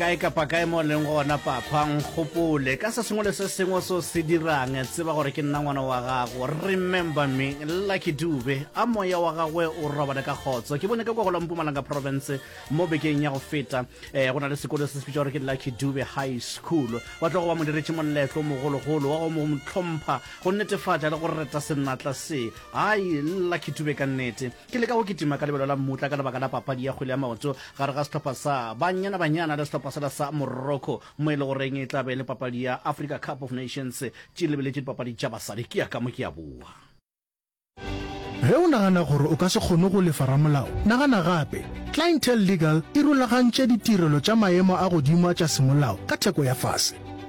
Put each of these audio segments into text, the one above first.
Kae kapa kae mo leng gona, Papa, nkgopole ka se sengwe le se sengwe so se dirang. Tseba gore ke nna ngwana wa gago. Remember me. Lucky Dube, a moya wa gagwe o robale ka kgotso. Ke bone ka kwa go la Mpumalanga Province mo bekeng ya go feta. Eh, go na le sekolo se se bitša gore ke Lucky Dube High School. Wa tlogo ba mo diretše moletlo mogologolo wa go mo tlhompha, go netefatša le go reta senatla se. Hai, Lucky Dube ka nnete. Ke leka go kitima ka lebelo la mmutla ka lebaka la papadi ya kgwele ya maoto gare ga sehlopha sa Banyana Banyana le sehlopha sela sa Morocco mo e le goreng e tla be e le papadi ya Africa Cup of Nations tše lebeletše dipapadi tša basadi. Ke ya ka mo ke a boa. Ge o nagana gore o ka se kgone go lefa ramolao, nagana gape. Clientele Legal e rulagantše ditirelo tša maemo a godimo a tša semolao ka theko ya fase.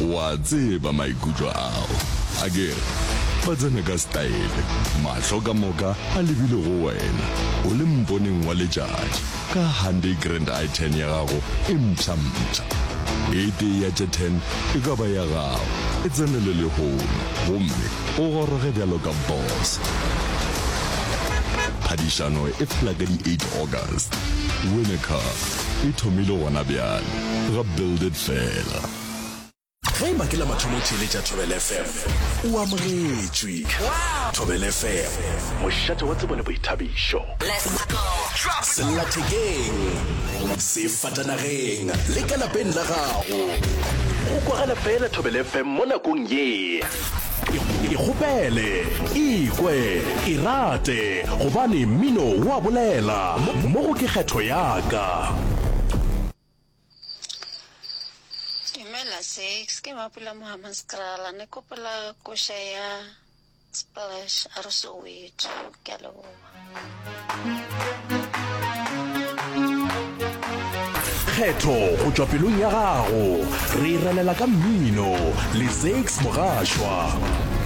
O a tseba maikutlo ao, akere? Ba tsena ka setaele, mahlo ka moka a lebile go wena, o le mponeng wa letšatši, ka Hyundai Grand i10 ya gago e mpsha-mpsha. E tee ya tše ten e ka ba ya gago, e tsenele lehono gomme o goroge bjalo ka boss. Phadišano e fela ka di eight August. Win a car. e thomile gona bjale, ga Build It fela. Ge eba ke la mathomo o theeletša Thobela FM, o amogetšwe. Thobela FM, mošate wa tsebo le boithabišo. Sellathekeng, sefatanageng le ka lapeng la gago, go kwagala feela Thobela FM mo nakong ye. ikgopele ikwe irate gobane mmino wa bolela mo go ke kgetho yaka Dumela Six, ke Mapula Mohama Skrala. Ne kopola kosha ya Splash a re Soweto. Ke a leboha. kgetho go tšwa pelong ya gago re relela ka mmino le six mogashwa